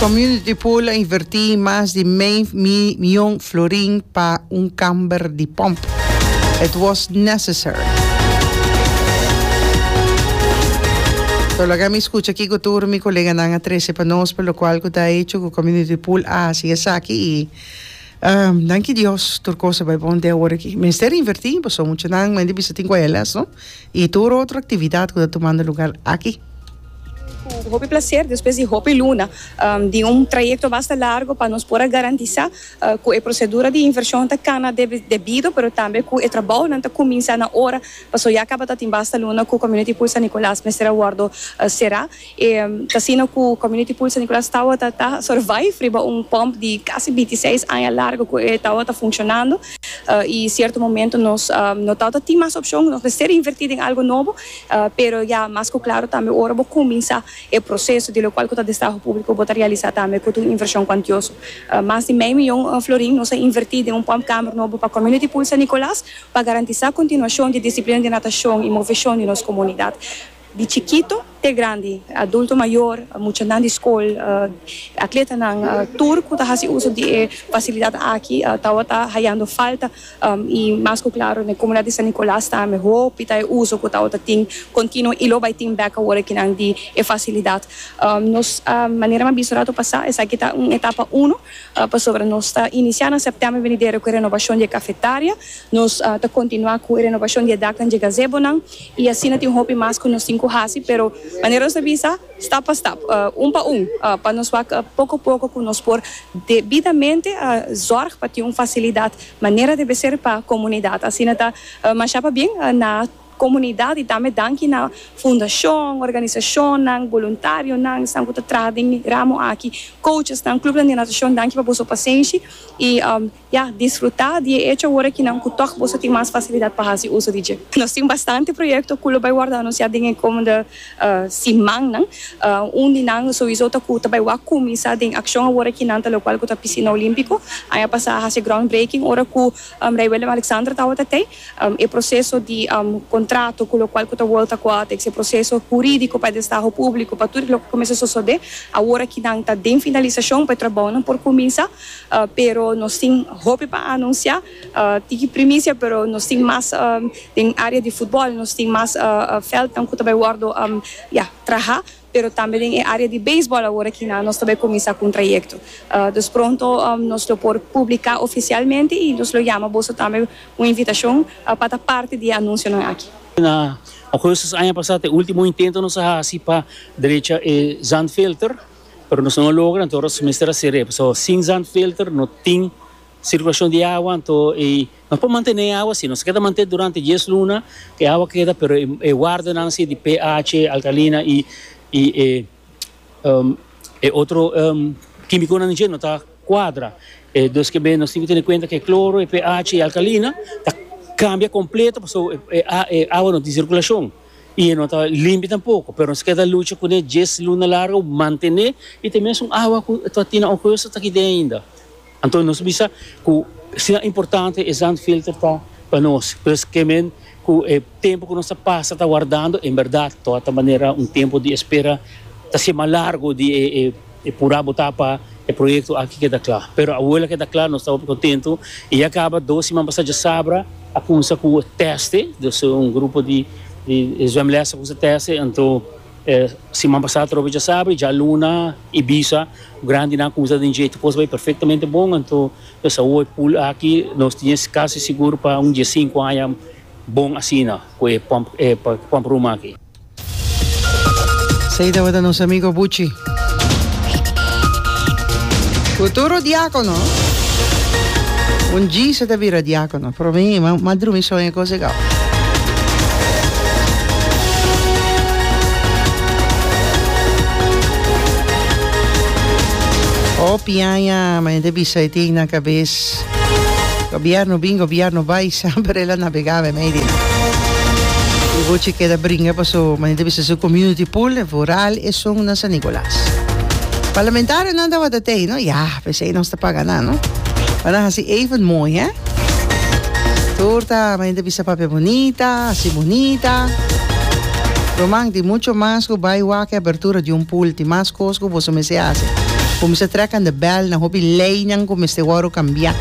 Community Pool a invertí mas di mei mion florin pa un kamber di pòmp. It was necessary. So laga mi skucha kiko tur mi koleganan a trese pa nos pa lokual ku ta hecho ku Community Pool a hasi esaki i danki Dios tur kos a bai bon den ora aki. Mester invertí pasobra muchanan mende bisa tin kuelas no i tur otro aktividat ku ta tumando lugar aki. Cu hopi placer despues di hopi luna di un trayecto basta largo pa nos por a garantisa cu e procedura di inversion ta cana debido pero tambe cu e trabaonan ta cuminsa na ora pasobra ya cabatatin basta luna cu Community Pool San Nicolas mester a wordo cera y ta asina cu Community Pool San Nicolas tawata ta survive riba un pump di casi binti seis aña largo cu e tawata funcionando y cierto momento nos no tawata tin mas opcion nos mester inverti den algo nobo. Pero ya mas ku klaro tambe ora bo kuminsá e proseso di lokual ku ta destraho públiko bo ta realisá tambe ku ta un invershon kuantioso. Mas di mei mion florin nos a invertí den un pump kamer nobo pa Community Pool San Nicolas pa garantisá kontinuashon di disiplina di natashon i moveshon di nos komunidat di chikito te grandi, adulto mayor, muchanan di skol, atletanan tur ku ta hasi uso di e fasilidat aki tawata hayando falta. i mas ku klaro na e komunidad di San Nicolas tambe hopi ta e uso ku tawata tin kontinuo i lo bai tin bek awor aki nan di e fasilidad nos manera mi a bisa rato pasa esaki ta un etapa uno pasobra nos ta inicia na septiember venidero ku e renovacion di e cafetaria nos ta kontinua ku e renovacion di e daknan di e gazebonan i asina tin hopi mas ku nos tin ku hasi pero manera nos a bisa stap pa stap un pa un pa nos wak poko poko ku nos por debidamente zorg pa tin un fasilidad Manera debe ser pa comunidad. Asina ta masha pabien na comunidad y tambe danki na fundacion, organisacionnan, voluntarionan esnan cu ta traha den e ramo aki, coachesnan, clubnan di natacion danki pa boso pasenshi y ya disfruta di e hecho awor aki nan cu tok boso tin mas facilidad pa haci uso di dje. Nos tin bastante proyecto cu lo bay wordo anuncia den e comende. simannan. Un di nan sowiso ta ku ta bai wak kuminsá den akshon awor aki nan ta lokual ku ta Pisina Olímpiko. Aña pasá a hasi groundbreaking ora ku Rei Willem-Alexander tabata tei. E proseso di kontrato ku lokual ku ta World Aquatics, e proseso hurídiko pa e destaho públiko, pa tur loke kuminsá sosodé. Awor aki nan ta den finalisashon pa e trabounan por kuminsá, pero nos tin hopi pa anunsiá. Tiki primicia pero nos tin mas den area di futbol nos tin mas veldnan cu ta bay wordo ya traha pero tambe den e area di beisbol awor aki nan nos ta bay cuminsa cu un trayecto dus pronto nos lo por publica oficialmente y nos lo yama boso tambe un invitacion pa ta parti di e anuncionan aki. Na augustus aña pasa ta e ultimo intento nos a haci pa drecha e zandfilter pero nos no a logra anto aros mester haci rep so sin zandfilter no tin Sirkulacion di awa, anto e no por mantene e awa si. Nos a keda manten durante dies luna, e awa keda, pero e wardenan si di PH, alkalina y y e e otro kimiconan dje no ta cuadra. Dos kebe nos tin cu tene cuenta cu e cloro, e PH y e alkalina ta cambia completo pasobra e e a e awa no tin sirkulacion y e no ta limpi tampoco, pero nos a keda lucha cune dies luna largo mantene y ta mesmo awa cu ta tin nan oco yos ta taki den ainda. Anto nos bisa cu sinan importante e zandfilter ta pa nos, pues ke men cu e tempo cu nos ta pasa ta wardando en berdad ta wata manera un tempo di espera ta haci mas largo di e pura bota pa e proyecto aki keda cla. Pero awo la keda cla nos ta hopi contento y ya caba dos siman pasa dje sabra a cumsa cu teste, dus un grupo di zwemles a cumsa teste anto. E siman pasá atrobe djasabra, djaluna, Ibiza, grandinan kumsa den dje. Tu kos bai perfektamente bon, anto nos a ua e pool aki, nos tin es kasi sigur pa un diesinku aña bon asina ku e pump e pump room aki. Esei tabata nos amigo Buchi. Futuro diákono. Un dji se ta bira diákono. Pro mi, m'a m'a drumi so en e cos e gau. O piaña, m'a hende bisa e tin na cabes, Gobierno bin, Gobierno bai, semper el a nabega be media. E bochi keda bringa paso m'a hende bisa su community pool, e vooral esun na San Nicolas. Parlamentarionan tabata tei, no? Ya, P'esei nos ta paga nan no. Bo nan hasi even mooi hè. Tur ta mi hende bisa papia bunita, hasi bunita. Roman tin mucho mas ku bai wak e abertura di un pool. Tin mas kos ku boso mester hasi. Kuminsá trekan de bèl na hopi leinan ku mester wòru kambiá.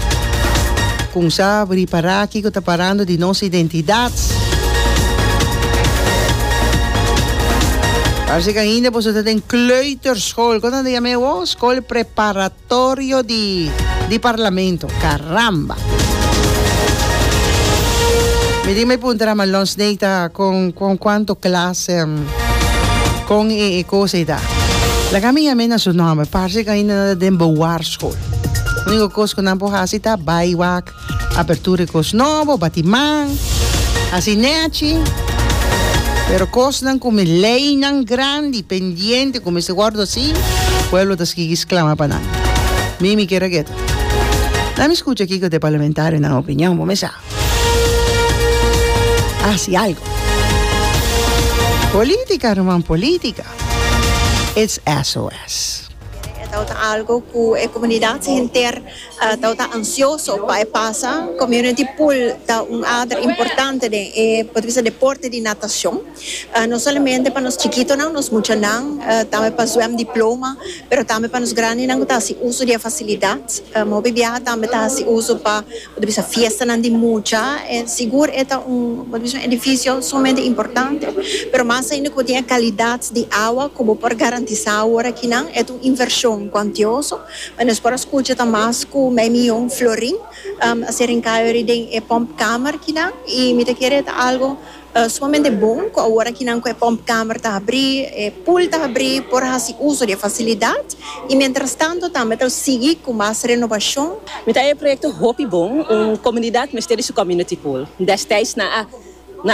Kunsá ripará kiko ta parando di nos identidat. Parse ku ainda boso ta den kleuter. Skol, koto ta yam'é awo? Skol preparatorio di di parlamento. Karamba! Mi tin me puntra ma Lon Snake ta kon kon kuanto klas en kon e e kosa ei ta. Laga mi yam'é na su nòmber, parse ku ainda nan ta den bowarskol. Úniko kos ku nan por hasi ta bai wak Apertura e kos nobo, bati man, hasi nechi. Pero kosnan ku mi leinan grandi, pendiente, ku mester wòrdu hasi, pueblo ta sigui sklama pa nan. Mi mi keda ketu. Laat mi skucha kiko ta e parlamentarionan opinion, bo mester hasi algu. Política, ruman, política it's SOS. Kere e ta ota algu ku e komunidat henter. Tau ta ansioso pa e pasa. Community pool ta un ader importante den e por ta bisa deporte di natacion. No solamente pa nos chikitonan, nos muchanan, tambe pa zwem diploma, pero tambe pa nos grandinan cu ta haci uso di e facilidad. Hopi biaha tambe ta haci uso pa por ta bisa fiestanan di mucha. E sigur e ta un, por ta bisa un edificio sumamente importante, pero mas ainda cu bo tin e calidad di awa cu bo por garantisa awor akinan e ta un inversion cuantioso. But nos por a scucha ta mas cu mei mi jong Florin a ser encayory den e pompkamer kinan y mi ta kere ta algo sumamente bon cu awor kinan cu e pompkamer ta habri, e pool ta habri por a haci uso di e facilidad y mientras tanto tambe ta sigui cu mas renovacion. Mi ta e proyecto hopi bon, un comunidad mester di su community pool, destids nan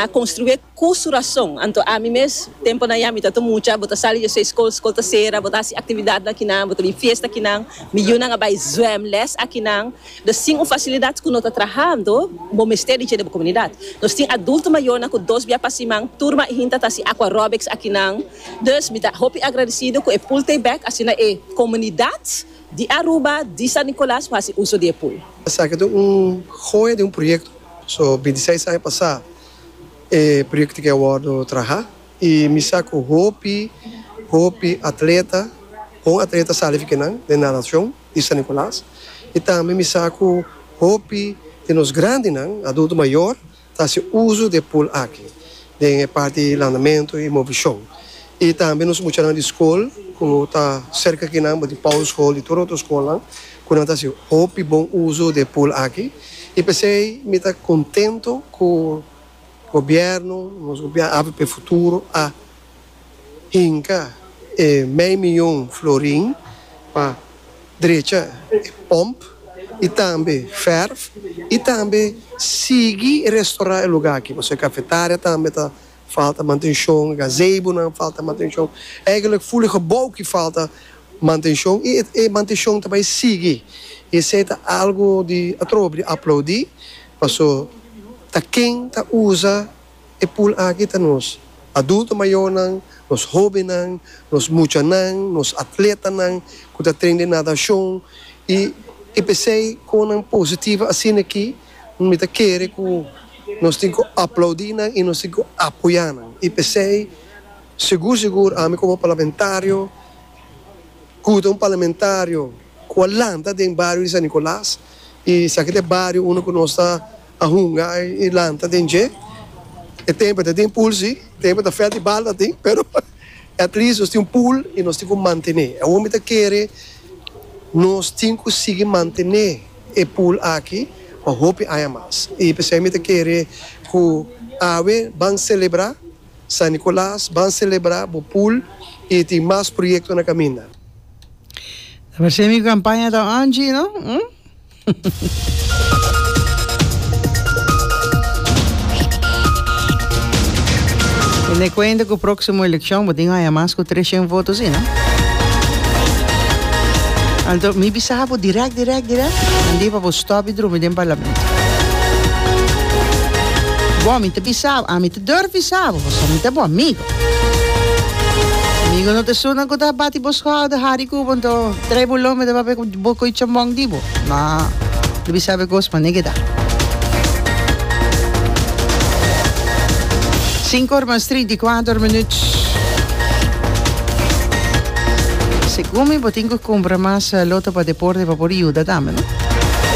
a construe. Ku su rason. Anto ami mes, temponan ya mi ta ta mucha, bo ta sali dje seis skol, skol ta sera, bo ta hasi aktividat na kinan, bo ta bin fiesta kinan, mi yunan a bai zwèm lès akinan. Dor sin un fasilidat ku no ta trahando, bo mester di dje den bo komunidat. Nos tin adulto mayornan ku dos bia pa siman, tur ma e hinta ta hasi aqua aerobics akinan. Dus mi ta hopi agradecido ku e pool tei bèk, asina e komunidat di Aruba, di San Nicolas, por hasi uso di e pool. Esaki ta un joya di un proyekto. So binti seis aña pasá E proyecto aki a wordo traha y mi sa cu hopi hopi atleta, bon atleta sali fi kinan den natacion di San Nicolas y tambe mi sa cu hopi di nos grandinan, adulto mayor, ta haci uzo di e pool aki den e parti landamento y movicion y tambe nos muchanan di school cu ta cerca kinan, di Paulus School y tur otro schoolnan. ku nan ta hasi hopi bon uso di e pool aki i p'esei mi ta kontento ku gobièrnu, nos gobièrnu avp Futuro a hinka e mei miyon florin pa drecha e pòmp i tambe fèrf i tambe sigui restorá e lugá aki pasobra e kafetaria tambe ta. Falta mantenshon, gazebonan falta mantenshon. Eigenlik ful e gebou ki falta mantenshon i e mantenshon ta bai sigui. I esei ta algu di atrobe di aplaudi paso ta ken ta usa e pul aki ta nos adulto mayonan, nos hobennan, nos muchanan, nos atletanan ku ta tren di nadashon i i p'esei kon nan positivo asina aki. Mi ta kere ku nos tin ku aplaudí nan i nos tin ku apoyá nan. I p'esei, segur segur ami komo parlamentario, ku ta un parlamentario ku a lanta den bario di San Nicolas, i esaki ta e bario unda ku nos ta a hunga i lanta den dje. E tempo e ta tin pool si, e tempo ta fèt i bal ta tin, pero at least nos tin un pool i nos tin ku mantené. Awor mi ta kere nos tin ku sigui mantené. E pool aki pa hopi aña mas y pesey mi ta kere cu awe ban celebra San Nicolas, ban celebra bo pool y tin mas proyecto na caminda. Ta parse mi campaña ta Angie no hm. Ten e cuenta cu proximo eleccion bo tin aña mas cu trescient voto si no. Anto mi. Saca bo direct direct direct nan di pa bo stop di drumi den parlamento. Bo ami ta bisa bo, ami ta durf bisa bo, pasobra mi ta bo amigo. Amigo no ta esun nan cu ta bati bo schual ta hari cu bo nto trae bo lombe ta papia cu bo coy chambong di bo. No, lo bisa bo e cos manera cu ta. Cinco or mas trinta y cuater minut. Gumi bo tin cu cumpra mas lota pa deporte pa por yuda tambe no.